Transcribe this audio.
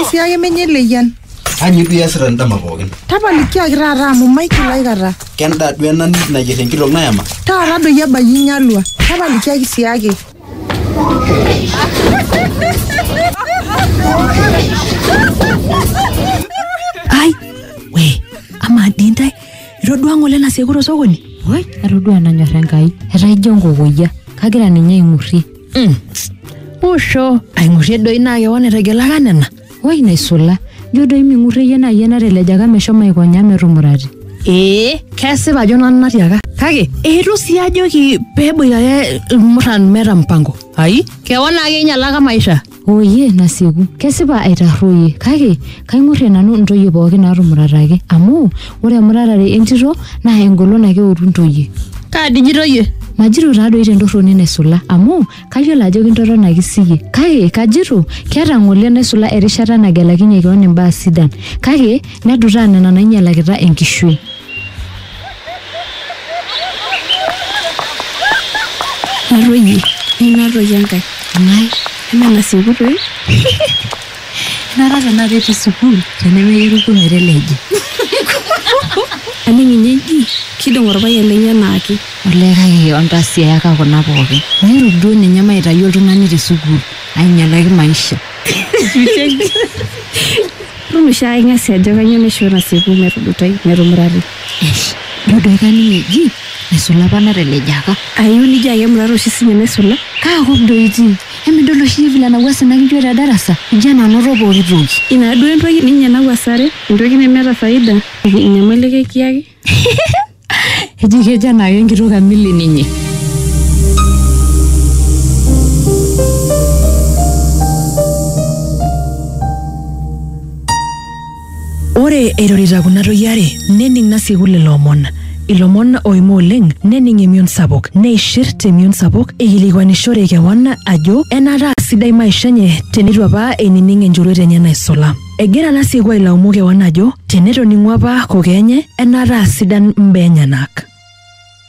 sii ake menye leyian Anyi duo iasita ndama pookin. tapalikiaki taata amu maigil aikata Kenda duo ena nayier enkitok nayama. taata doi ebayie inyalua tapalikiaki sii ake ai we amaa dii ntae itodua ng'ole enasiaku tosokoni Woi, atodua nanyor Enkai. Etaa ijo nkokoyia. Kagira ninye aing'urrie. Mm. Usho, aing'urrie doi naa kewan etegelaka nena. Woi naisula, ijo doi ming'urrie iyie naa iyie natelejaka meshomo aikonya metumurati. Ee, kesipa ajo nanu natiaka. Kake, eitu sii ajoki peboitare ilmuran meeta mpango. Ai, kewan ake einyalaka maisha. Ooyie nasieku, kesipa aitarruoyie, kake kaing'urrie nanu intoyie pooki naatumurataki, amu ore emuratare entito naa engolon ake eutu intoyie. Kaa diji itoyie? Majito taadoi tentorroni naisula, amu kayiolo ajo kintotonaki siyie, kake kajito keeta ng'ole enaisula erishata nagelakinyie keon imbaa sidan, kake nedutaa nena nainyialakita enkishui. Natoyie. Natoyie enkae. Ng'ai? Eme nasieku toi. Nara tenakata etii sukuul tenemeyieu irkuo meteleja. Aning ninye eji kidong orpayian lenye enaake. Olee kake ontasiayaka kuna pookin. Mairuk duo ninye maitayu oltung'ani te sukuul ainyalaki maisha. Micheki. Rumisho ai ng'asi ajo kanyoo naishoo nasieku metudutai metumurari. Eish! Ijo duo kaning eji mesula apa natelejaaka. Ayio nijo ake emurata oshi sinye mesula. Kaa kop doi itii? Emidol oshi iyie vile nawuasa ina kijuo te darasa? Ijo enanoto pooki toki. Ina duo entoki ninye nawuasare? Entoki nemeeta faida? Enyamali ake kiyaki? eji kejo enaake enkitok emili ninye Ore eirorita kuna toyie are nening nasieku lelo omon. Ilomon oimu oleng nening emion sapuk neishir temion sapuk eikilikuanishore kewan ajo enaata aa sidai maisha enye teneitu apa einining enchoruet enye naisula. Egira Nasiku ailaumu kewan ajo tenetoning'u apa kokoo enye enaata aa sidan mbaa enyenak.